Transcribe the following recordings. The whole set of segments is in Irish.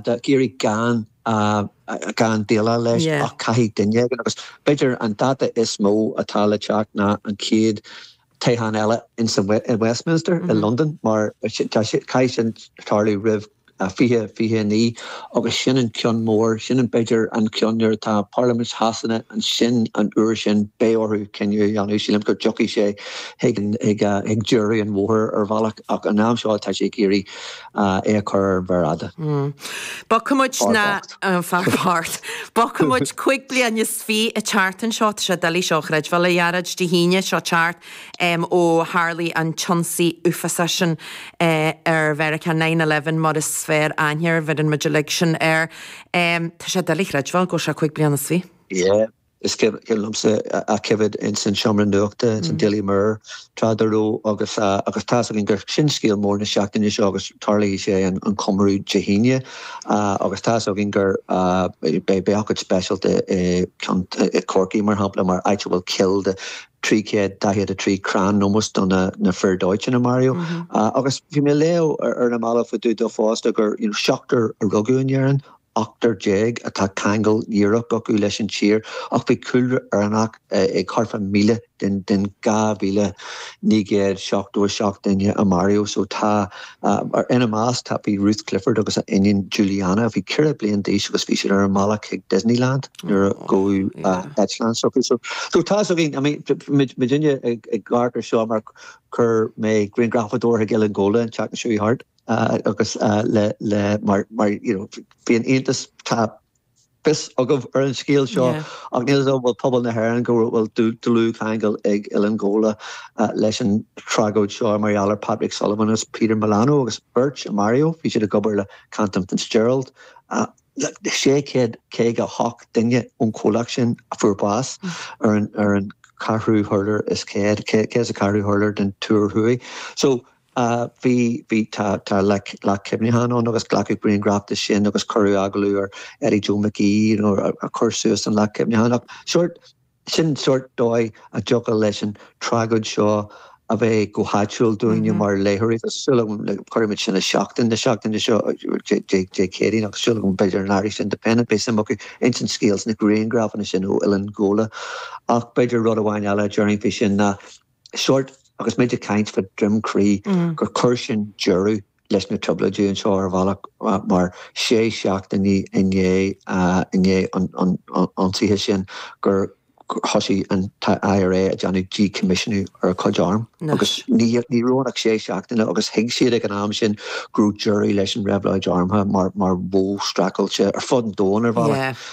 Tá sé ag iarraidh gan gan déileáil leis ach caithfidh duine éigin agus b'fhéidir an dáta is mó atá le teacht ná an chéad toghchán eile sa Westminster i Londain mar caithfidh sin tarlú roimh 2029 agus sin an ceann mór, sin an b'fhéidir an ceann nuair atá Parlaimint Shasana ansin an uair sin beidh orthu cinneadh a dhéanamh. Sílim go dtiocfaidh sé chuig deireadh an bhóthair ar bhealach ach an am seo tá sé ag iarraidh é a chur ar mhéar fhada. Bogfaidh muid ar aghaidh. Fear bocht. Fear bocht. Bogfaidh muid cúig bliana is fiche an tseachtain seo. Tá sé doiligh seo a chreidbheáil, a Ghearóid. Dé hAoine seo thart ó tharla an t-ionsaí uafásach sin ar Mheiriceá, nine eleven mar is fearr aithne air, bheireann muid uilig sin air. Tá sé doiligh a chreidbheáil go bhfuil sé cúig bliana is fiche. Yeah. Is cuimhin liomsa ag coimhéad ins an seomra nuachta, ins an Daily Mirror, tráth dá raibh agus agus tá's againn gur sin scéal mór na seachtaine seo agus tarlóidh sé an an comóradh Dé hAoine agus tá's againn gur beidh beidh ócáid speisialta i gCionn i gCorcaigh mar shampla mar, áit a bhfuil coill de trí chéad daichead a trí crann in ómós do na na fir dóiteáin a maraíodh agus bhí mé ag léamh ar na mallaibh fá dtaobh de fosta gur seachtar a rugadh in Éirinn ochtar déag atá ceangal díreach acu leis an tír ach bhí cúlra Éireannach ag thart fá míle den 2,977 duine a maraíodh so tá, ina measc tá, bhí Ruth Clifford agus a iníon Julianna, a bhí ceithre bliain d'aois agus bhí siad ar a mbealach chuig Disneyland nuair a gabhadh eitleán s'acu so tá so againn, I mean muidinne ag amharc ar seo mar chuir mé grianghrafadóir chuig Oileán Ghabhla an tseachtain seo thart. agus le le mar mar you know bíonn iontas tá fios agaibh ar an scéal seo ach níl a fhios an bhfuil pobal na hÉireann go bhfuil dlúthcheangal ag Oileán Ghabhla leis an tragóid seo mar gheall ar Patrick Sullivan agus Peter Milano agus beirt a maraíodh bhí siad ag obair le Cantor Fitzgerald 658 duine ón chomhlacht sin a fuair bás ar an ar an ceathrú hurlár is céad, céad is a ceathrú hurlár den túr thuaidh so a bhí, bhí, tá, tá leac, leac cuimhneacháin ann agus glacadh grianghraf de sin agus cuireadh agallamh ar Eddie Joe McGee, you know, ar, a chuir suas an leac cuimhneacháin ach sort, sin sort dóigh a dtiocfadh leis an tragóid seo a bheith go háitiúil dúinne mar léitheoirí agus súil agam le, cuirimid sin i Seachtain na seachtaine seo, Dé, Dé, Dé Céadaoin agus súil agam b'fhéidir an Irish Independent beidh suim acu ins an scéal is na grianghrafanna sin ó Oileán Ghabhla ach b'fhéidir rud amháin eile a déarfainn faoi sin ná sórt agus muid ag caint fá Droim Crí gur chuir sin deireadh leis na trioblóidí anseo ar bhealach mar sé seachtainí i ndiaidh an ionsaithe sin gur thoisigh an IRA ag déanamh díchoimisiúnú ar a cuid arm agus ní raibh ann ach sé seachtaine agus thuig siad ag an am sin go raibh deireadh leis an réabhlóid armtha mar mar mhodh streachailte ar fud an domhain ar bhealach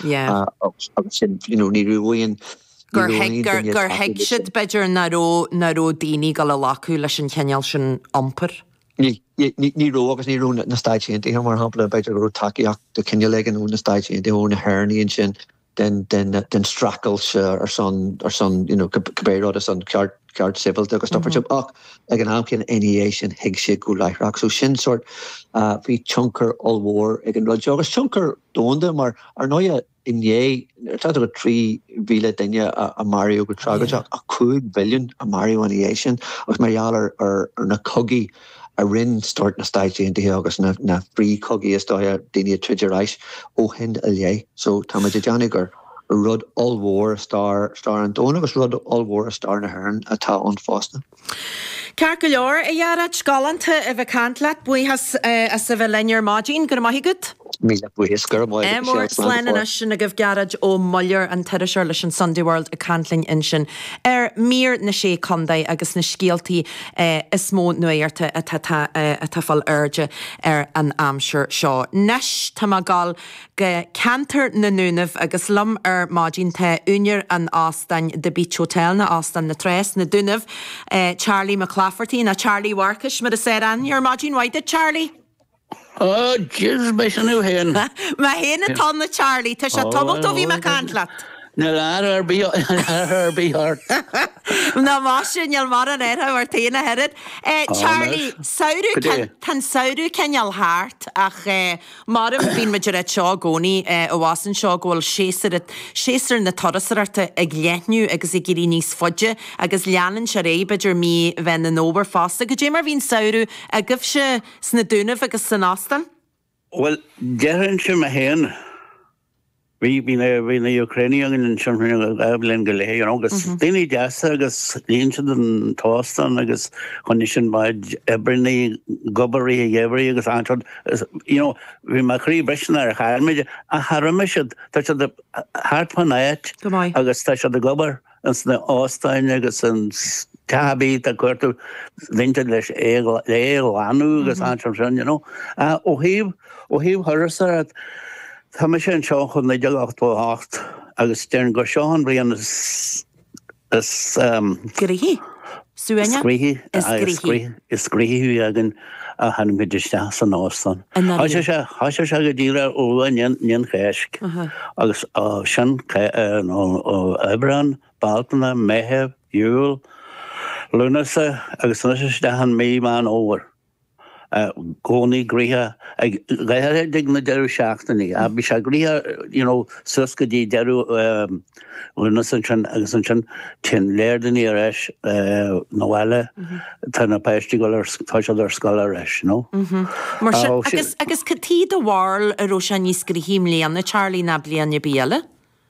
agus sin you know ní raibh aon Ní raibh aon duine tacúil leis sin. Gur thuig siad, b'fhéidir, ná raibh, ná raibh daoine ag gabháil a ghlacadh leis an chineál sin iompair. Ní, ní raibh agus ní raibh na Stáit Aontaithe, mar shampla, b'fhéidir go raibh tacaíocht de chineál éigin ó na Stáit Aontaithe, ó na hÉireannaigh ansin den, den, den streachailt ar son, ar son, you know, cibé rud, ar son ceart, ceart sibhialta agus stuff mar sin ach ag an am céanna, ina dhiaidh sin, thuig siad go láithreach. So sin sórt, bhí tionchar ollmhór ag an rud seo agus tionchar domhanda mar, ar ndóigh, inné, ar tráth dúinn 3,000 duine a maraíodh go trágóideach ach 5 mhilliún a maraíodh ina dhiaidh sin agus mar gheall ar na cogaí a rinn sórt na Stáit Aontaithe agus na frith-chogaí is dócha, daoine ag troid ar ais ó shin i leith. So tá muid ag déanamh gur rud ollmhór i stair an domhain agus rud ollmhór i stair na hÉireann atá ann fosta. Ceart go leor, a Ghearóid. Galánta a bheith ag caint leat. Buíochas as a bheith linn ar maidin. Go raibh maith agat. Míle buíochas. Go raibh maith agat, Michelle. Slán go fóill. Slán. Anois sin agaibh Gearóid Ó Muilleoir, an t-iriseoir leis an Sunday World ag caint linn ansin ar Mír na Sé Contae agus na scéaltaí is mó nuachta atá ag fáil airde ar an aimsir seo. Nois, tá mé ag gabháil. go ceantar na nDúnaibh agus liom ar maidin tá úinéir an óstáin The Beach Hotel nó Óstán na Trá sna Dúnaibh, Charlie Mac Laifeartaigh, nó Charlie Mharcais mar is fearr aithne air. Maidin mhaith duit Charlie! Oh jeez, ab é sin thú fhéin! Mé fhéin atá ann a Charlie, tá sé tamalt ó bhí mé ag caint leat! Níl aire ar bith ort! Nach maith sin, níl mar an air thú ar taobh na hÉireann. Charlie, samhradh, tá an samhradh cineál thart ach. Mar a deirim, bíonn muid ag ráit seo i gcónaí, eh, abhus anseo go bhfuil séasúr, séasúr na turasóireachta ag leathnú agus ag éirí níos faide agus leanann sé ar aghaidh, b'fhéidir mí Mheán an Fhómhair fosta. Goidé mar bhí an samhradh agaibhse sna Dúnaibh agus san Óstán? Bhuel, déarfainnse mé féin Bhí bhí na bhí na Úcránaigh againn ansin fá choinne bliain go leith you know agus daoine deasa agus líon siad an t-óstán agus choinnigh sin mo chuid oibreannaí ag obair i rith an gheimhridh agus anseo is you know bhí mo chroí briste nuair a chaill mé iad ach char imigh siad tá siad thart fán áit Go maith. agus tá siad ag obair. ins na h-óstáin agus ins ceatha bídh tá cuartú déanta leis Aodh é a ghlanadh agus an mar sin you know. Ó thaobh ó thaobh thurasóireacht tá mise anseo ó 1988 agus déarfainn gur seo an bhliain is is um. gnoithí. Is gnoithí, aye, is gnoithí, is gnoithí againn ó tháinig muid isteach san óstán. I Tá sé ndáiríre. seo, tá sé seo go dtí le ón, ón Cháisc. Agus á, sin, ca, eh, nó, ó, Aibreán, Bealtaine, Meitheamh, Iúil, Lúnasa, agus anois isteach i mí Mheán Fómhair. i gcónaí gnoitheach go háithrid ag na deireadh seachtainí ach bhí sé gnoitheach you know suas go dtí deireadh Lúnasa ansin agus ansin téann go leor daoiní ar ais 'na bhaile tá na páistí go ar tá siad ar scoil ar ais nó Mar sin agus agus cad chuige do bharúil a raibh sé níos gnoithí i mbliana Charlie ná bliain ar bith eile?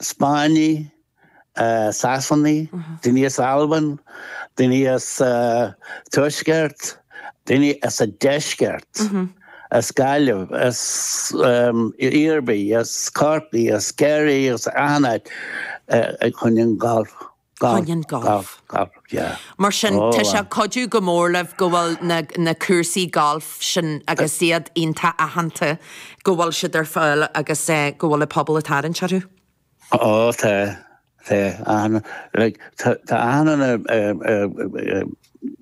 Spáinnigh, Sasanaigh, daoine as Albain, daoine as an Tuaisceart, daoine as an Deisceart, as Gaillimh, as Iarmhí, as Corcaigh, as Ciarraí, as achan áit fá choinne an ghalf. Choinne an golf. Golf, yeah. Mar sin, tá sé ag cuidiú go mór libh go bhfuil na cúrsaí golf sin agus iad iontach aitheanta, go bhfuil siad ar fáil agus go bhfuil an pobal ag tarraingt orthu. Ó, tá, tá, achan, like, tá, tá achan duine ar,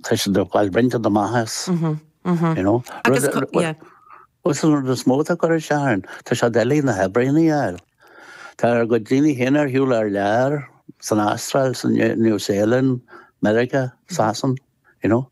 tá siad ag fáil rud inteacht amach as, you know. Agus, yeah. Is an rud is mó atá ag cur isteach orainn, tá sé doiligh na hoibríonna a fháil. Tá ár gcuid daoine féin ar shiúl thar lear, san Astráil, sa New Zealand, Meiriceá, Sasain, you know.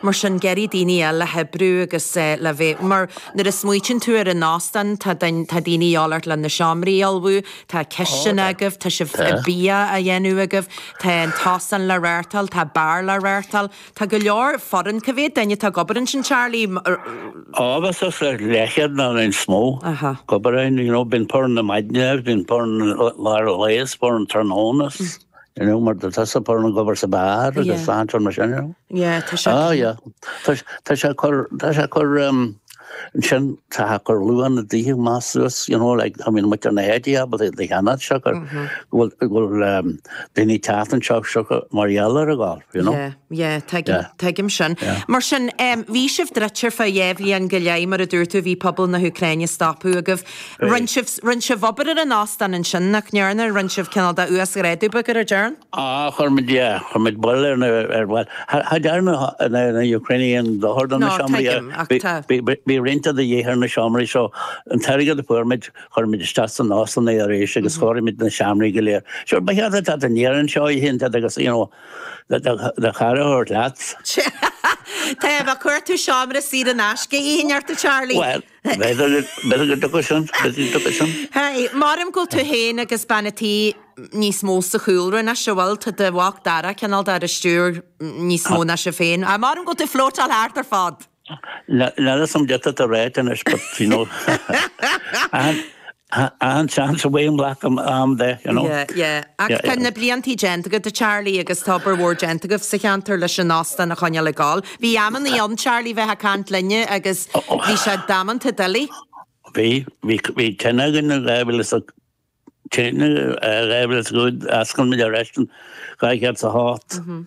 Mar sin, ag iarraidh daoine eile le hoibriú agus le bheith, mar nuair a smaoitíonn tú ar an óstán, tá daoine a dhíobháil ort le na seomraí a ullmhú, tá cistin agaibh, tá sibh, bia á dhéanamh agaibh, tá an t-óstán le reáchtáil, tá beár le reáchtáil. Tá go leor foireann. Cá mhéad duine atá ag obair ansin Charlie? Á, suas ar leathchéad nó níos mó. Ag obair ann you know bíonn foireann na maidne agus bíonn foireann lár an lae is foireann tráthnóna is you know mar a deir tusa foireann ag obair sa bar agus san mar sin you know. Yeah tá sé. Tá sé cur tá sé cur Ansin chaithfeadh gur luadh na daoithe maith suas, you know, like, I mean, muid ar na headie abair i dTigh Sheanad seo gur bhfuil, go bhfuil ehm daoine ag teacht anseo seo go mar gheall ar an ghailf, you know. Yeah, yeah, tuigim, Yeah. tuigim sin. Yeah. Mar sin, em, bhí sibh druidte ar feadh dhá bhliain go leith, mar a dúirt tú, bhí pobal na hÚcráine ag stopadh agaibh. Rinn sibh, rinn sibh obair ar an óstán ansin, nach ndearna? Rinn sibh cineál de uasghrádú beag air, an dtearn? Ach chuir muid, yeah, chuir muid bail ar na, ar, bhuel, cha dearna na hÚcránaigh aon dochar do na seomraí, yeah. No, tuigim, ach tá. Bhí, bhí roinnt de dhíth ar na seomraí, so an t-airgead a fuair muid, chuir muid isteach san óstán é arís agus chóirigh muid na seomraí go léir. Sure, ba cheart duit teacht deireadh, seachtaine, agus, you know, do, do, do chara a thabhairt leat. Sea, taobh, gheobhaidh tú seomra saor in aisce, a Fhinn, ó Charlie. Bhuel. Bheadh ag dochar san, bheadh ag dochar san. Hey, déarfainn go bhfuil tú fhéin agus bean an tí níos mó sa chúlra anois, bhuel, tá do mhac Dara cineál dá stiúradh níos mó ná sibh féin. Hey, déarfainn go bhfuil tú ag flótáil thart ar fad. Ná raibh san déanta do ráite anois, but you know. An seans é a ghlacadh am de, you know. Yeah, yeah. Ach tá na bliantaí déanta agat, a Charlie, agus tá obair mhór déanta agaibh sa cheantar leis an óstán a choinneáil ag gol. Bhí amannaí ann, Charlie, bhí tú ag caint linne agus bhí sé damanta doiligh. Bhí, bhí, bhí tine againn in 2005, tine, 2005, d'fhoscail muid ar ais in 207.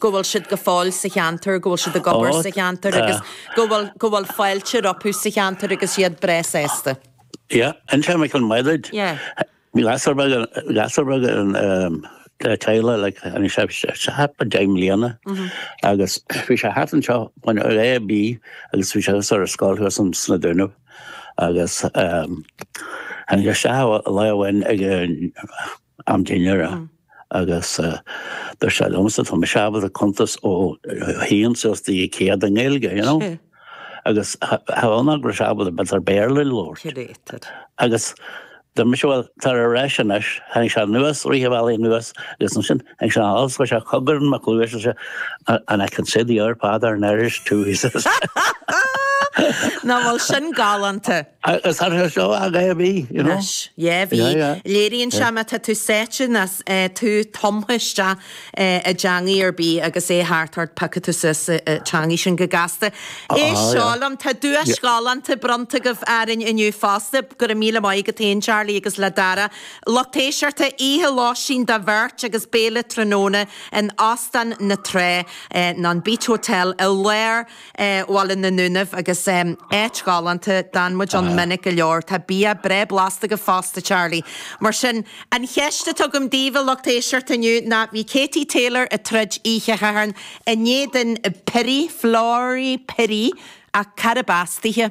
go bhfuil siad go fóill sa cheantar, go bhfuil siad ag obair sa cheantar agus go bhfuil, go bhfuil fáilte rompu sa cheantar agus iad breá sásta. Yeah, and sure Michael Mairid. Yeah. Bhí lad beag, gasúr beag in umm le teaghlach like and níl sé, sé ach b'fhéidir deich mbliana agus bhí sé thart anseo when it was a and b agus bhí sé thart ar an scoil thuas ins na Dúnaibh agus umm and tháinig sé isteach lá amháin ag an am dinnéara agus dúirt sé liomsa tá mise ábalta cuntas ó haon suas go dtí céad i nGaeilge you know agus chan ábalta b'fhéidir Béarla a labhairt. Curated. Agus dúirt mise bhuel tar ar ais anois tháinig sé anuas leath bealaigh anuas agus ansin tháinig sé anall so bhí sé ag cogar i mo chluais and I can say the Our Father in Irish too he says. Nach bhfuil sin galánta. Gasúr deas é a bhí, you know. Anois, yeah, bhí. Yeah, yeah. Léiríonn sé má tá tú sáite ná eh, tú tumtha isteach eh, i dteangaí ar bith agus é thart ort piocfaidh tú suas an teangaidh sin go gasta. Ah, Éist yeah liom, tá duais ghalánta bronnta agaibh arainn inniu fosta. go raibh míle maith agat féin, Charlie, agus le Dara. A lucht éisteachta, oíche lóistín do bheirt agus béile tráthnóna in Óstán na Trá, eh, nó an Beach Hotel i lár Bhaile na nDúnaibh agus áit ghalánta. D'fhan muid ann minic go leor. Tá bia breá blasta acu fosta, Charlie. Mar sin, an cheist atá agam daoibh, a lucht éisteachta, inniu ná, bhí Katie Taylor ag troid oíche Shathairn in éadan Pili, Flora Pili, ach cárb as dithe?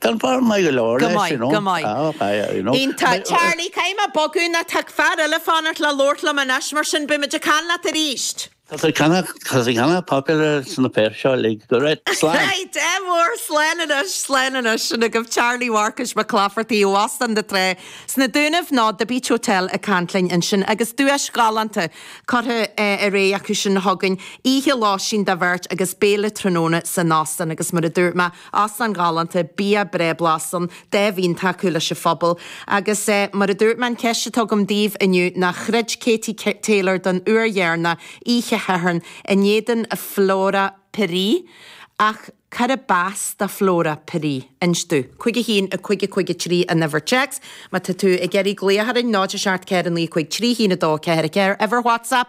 Tá bhar maith go leor Go leis, maith, you know. go maith. Ah, ok, yeah, you know. Iontach, But- Charlie, caithfidh mé bogadh nó tá fear eile ag fanacht le labhairt liom anois, mar sin beimid ag caint leat arís. Tá sé ceanna- tá sé ceanna popular sna fir seo, like, go raibh slán. Hey, de bharr, slán anois, slán anois, sin agaibh Charlie Mharcais Mac Laifeartaigh ó Óstán na Trá sna Dúnaibh nó The Beach Hotel ag caint linn ansin agus duais ghalánta curtha eh, ar fáil acu sin a thugann oíche lóistín do bheirt agus béile tráthnóna san Óstán agus mar a dúirt mé, Áislann ghalánta, bia breá blasta, an-tábhachtach tacú leis an phobal. Agus mar a dúirt mé, an ceist atá agam daoibh inniu, nó throid Katie Taylor don uair dheireanach oíche Shathairn in éadan Flora Pili. Ach cárb as do Flora Pili? Inis dúinn. Cúig a haon a cúig a cúig a trí an uimhir téacs má tá tú ag iarraidh glaoch orainn, 0 7 4 9 5 3 1 2 4 4 uimhir WhatsApp.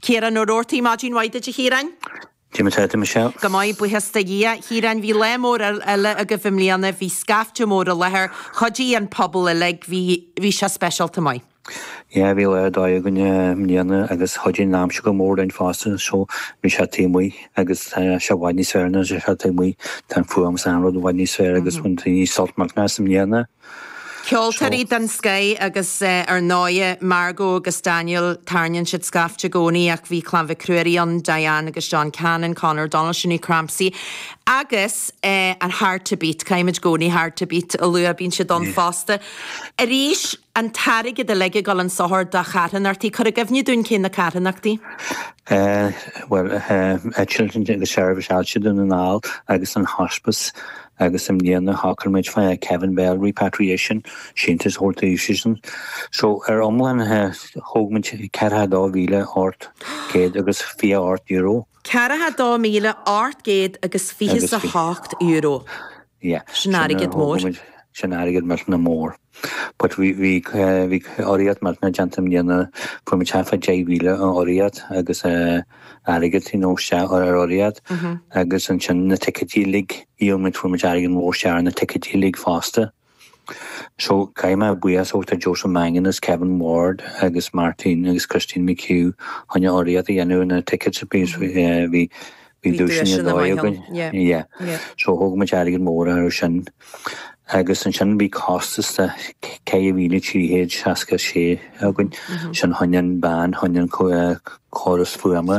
Ciarán Ó Roartaigh Maidin mhaith duit a Chiaráin. Cad é mar tá tú Michelle. Go maith, buíochas do Dhia. Chiaráin, bhí lá mór eile agaibh i mbliana, bhí scaifte mór i láthair, chuidigh an pobal uilig, bhí, bhí sé speisialta maith. Yeah, bhí lá ar dóigh againn i mbliana agus chuidigh an aimsir go mór linn fosta, so bhí sé taobh amuigh agus tá sé i bhfad níos fearr nuair atá sé taobh amuigh, tá an fuaim is an rud i bhfad níos fearr agus bhain daoine sult mór as i mbliana. Ceoltóirí den scoith agus ar ndóighe Margo agus Daniel, tarraingíonn siad scaifte i gcónaí ach bhí Clann Mhic Ruairí ann, Diane agus John Cannon, Conor O'Donnell, Sinéad Crampsie agus an Hard to Beat, caithfimid i gcónaí Hard to Beat a lua, bíonn siad ann fosta. Arís, an t-airgead a lig ag dul an sochar do charthanachtaí, cuir i gcuimhne dúinn cé na carthanachtaí? Bhuel, Children's Service Altrincham and All agus an Hospice. agus i mbliana shocair muid Kevin Bell Repatriation, síntiús a thabhairt dóibhsean. So, ar iomlán, thóg muid ceithre ha dó mhíle árd céad agus fiche árd euro. Daichead a dó míle ocht gcéad agus fiche 's a hocht euro. Yeah. Sin airgead mór. Sin airgead millteanach mór. But bhí bhí bhí urraíocht mar a déarfá i mbliana fuair muid suas le deich míle urraíocht agus eh airgead you know sea ar ar urraíocht agus ansin na ticéidí uilig dhíol muid fuair muid airgead mhór sea ar na ticéidí uilig fosta. So caithfidh mé buíochas a thabhairt do Joseph Mangan is Kevin Ward agus Martin agus Christine McHugh chun urraíocht a dhéanamh ar na tickets bhí eh bhí Bhí duaiseanna ar dóigh againn. Yeah. So thóg muid airgead mór ar sin. Agus ansin bhí costas de 4,366 againn. Sin fá choinne an band, fá choinne an córas fuaime.